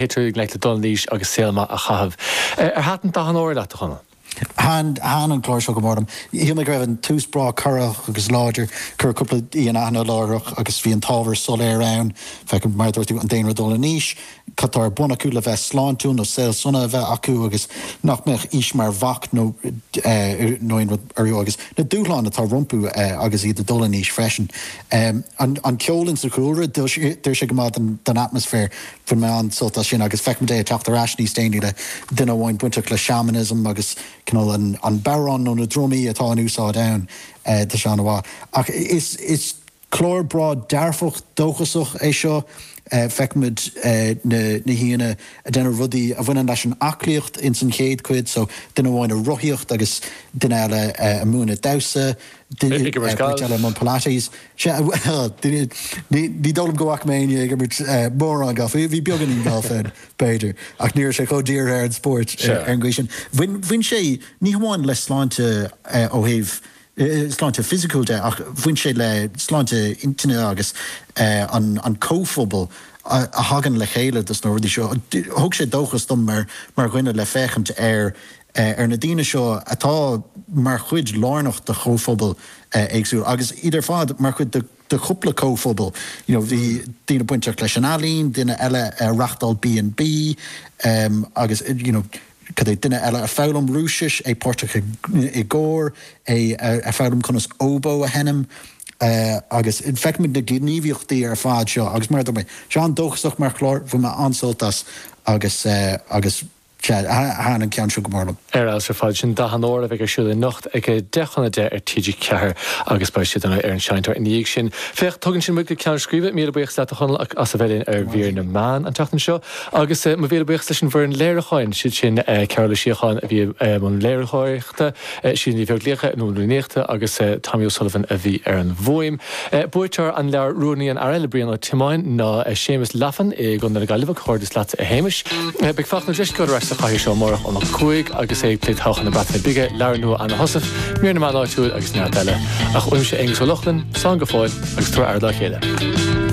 Téigh i ngleic le dul in aois agus saol maith a chaitheamh. Ar thaitin Dath an Óir leat, a Chonaill? Thaitin, thaitin an clár seo go mór liom. Shíl mé go raibh an tús breá corraitheach agus láidir. Cuireadh cúpla aoi in aithne láithreach agus bhí an t-ábhar soiléir ann. Feicim, mar a dúirt tú, an daonra ag dul in aois, cad tá ar bun acu le bheith sláintiúil nó saol sona a bheith acu agus nach mbeadh aois mar bhac nó nó aon rud orthu agus na dúshláin atá rompu agus iad ag dul in aois freisin. An ceol ins an chúlra, d'oir sé go maith don atmaisféar. Bhain mé an-sult as sin agus feicimid é ag teacht ar ais níos déanaí le duine amháin bainteach le shamanism agus cineál an bodhrán nó na drumaí atá in úsáid ann tá sé an-mhaith. Ach is clár breá dearfach, dóchasach é seo, feicimid na haíonna ag déanamh rudaí a bhaineann leis an aclaíocht ins an chéad cuid so duine amháin ag rothaíocht agus duine eile ag múineadh damhsa, duine eile ag múineadh pilates. Sea, ní dóigh liom go bhfaca mé éinne ag imirt mórán gailf, bhí beagáinín gailf ann, b'fhéidir, ach ní raibh sé chomh dírithe ar an spóirt ar an gcaoi sin. Bhain sé ní hamháin le sláinte ó thaobh sláinte fisiciúil de ach bhain sé le sláinte intinne agus an comhphobal a thagann le chéile dos na rudaí seo. Thug sé dóchas dom mar dhuine le féachaint ar ar na daoine seo atá mar chuid lárnach de chomhphobail éagsúla agus iad ar fad mar chuid de chúpla comhphobal you know bhí daoine bainteach leis an ealaín, duine eile ag reachtáil B&B agus you know cad é duine eile ag foghlaim Rúisis, é páirteach i gcór, é ag foghlaim conas óbó a sheinm agus feicimid na gníomhaíochtaí ar fad seo agus mar a dúirt mé, tá sé an-dóchasach mar chlár, bhain mé an-sult as agus, agus. Sea. Thaitin an ceann seo go mór liom. Ar fheabhas ar fad. Sin Dath an Óir a bheidh ar siúl anocht ag 10 chun 10 ar TG4 agus beidh siad ar an seinnteoir ina dhiaidh sin. Féach, tugann sin muid go ceann scríbe. Míle buíochas leat, a Chonaill, as a bheith linn ar Mhír na Meán an tseachtain seo. Agus mo mhíle buíochas leis an bhfoireann léiriúcháin, siad sin Cearbhall Ó Síocháin a bhí i mbun léiritheoireachta, Siad Ní Bheaglaoich, Nuala Ní Fhlaochta agus Tommy O'Sullivan a bhí ar an bhfuaim. Buaiteoir an leabhair Rúnaí an Aire le Brian Ó Tiomáin ná Séamus Laffan i gContae na Gaillimhe. Comhghairdeas leatsa a Shéamais. Beidh Fachtna Ó Drisceoil ar ais sa chathaoir seo amárach óna 5 agus é ag plé todhchaí na Breataine Bige, leabhar nua Anna Heussaff, Mír na Meán Áitiúil agus neart eile. Ach uaimse Aonghus Ó Lochlainn, slán go fóill agus tabhair aire dá chéile.